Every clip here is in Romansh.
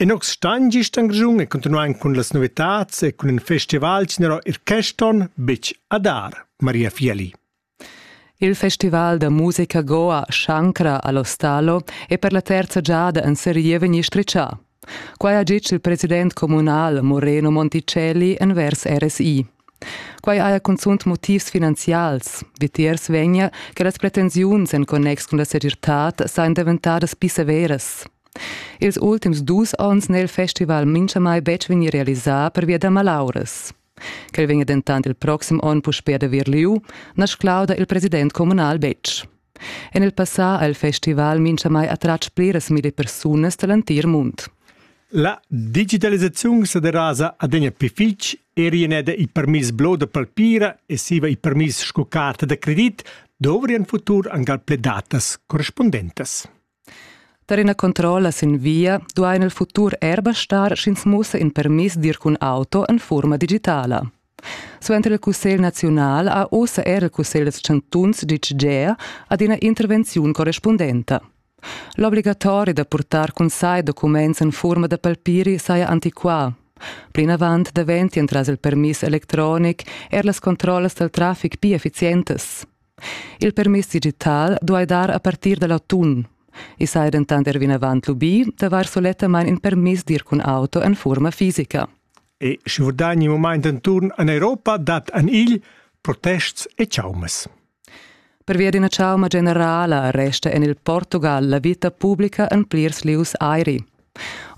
In nox stagn gist in Grischun è continuà cun las novitads e cun in festival general il quest'on betg a dar, Maria Fiali. Il festival da musica Goa Shankra all'Ostalo è per la terza giada en serie vegnì strizzà. Quai ha ditg il president communal Moreno Monticelli envers RSI. Quai haja cunzunt motivs finanzials. Vitiers vegnia che las pretensiuns en connex cun la segirtad sajan daventadas pli severas. Ils ultims dus onns n'è il festival minchamai betg vegnì realisà pervia da malauras. Quel vegnia dentant il proxim onn puspè da vir lieu, na sclauda il president communal betg. En il passà ha il festival minchamai attratg pliras milli persunas da l'entir mund. La digitalisaziun sa derasa adegna pli fitg Erieneda il permiss blo da palpira e siva il permiss sco carta da credit dovrien futur angal ple datas correspondentas. Per ina controlla sin via duain il futur er bastar sch'ins mussa in permiss dir cun auto en forma digitala. Suenter il Cussegl naziunal ha ussa er il Cussegl dels chantuns ditg gea ad ina intervenziun correspondenta. L'obligatori da purtar cun sai documents en furma da palpiri saja antiquà. Plinavant daventi entras il permiss electronic er las controllas dal traffic pia efficientas. Il permiss digital duai dar a partir dal autunn. I saja dentant er vinavant lubì d'avair sulettamain in permiss d'ir cun auto en furma fisica. E sche vurdani in mument enturn en Europa dat en igl protests e chaumas. Pervia d'ina chauma generala resta en il Portugal la vita publica en plirs lieus airi.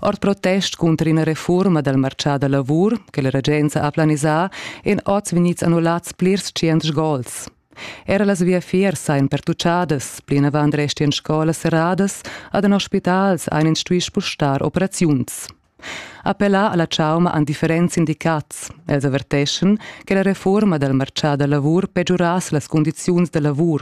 Ord protest cunter ina refurma dal martgà da lavur che la regenza ha planisà èn oz vegnids annullads plirs tschient gols. Era las viafiers sajan pertucciadas, plinavant restian scolas serradas, ad hospitals ein instui spustar operaziuns. Appellà alla chauma han differents sindicats. Els averteschan che la reforma dal marchà da lavur pegiurass las cundiziuns da lavur.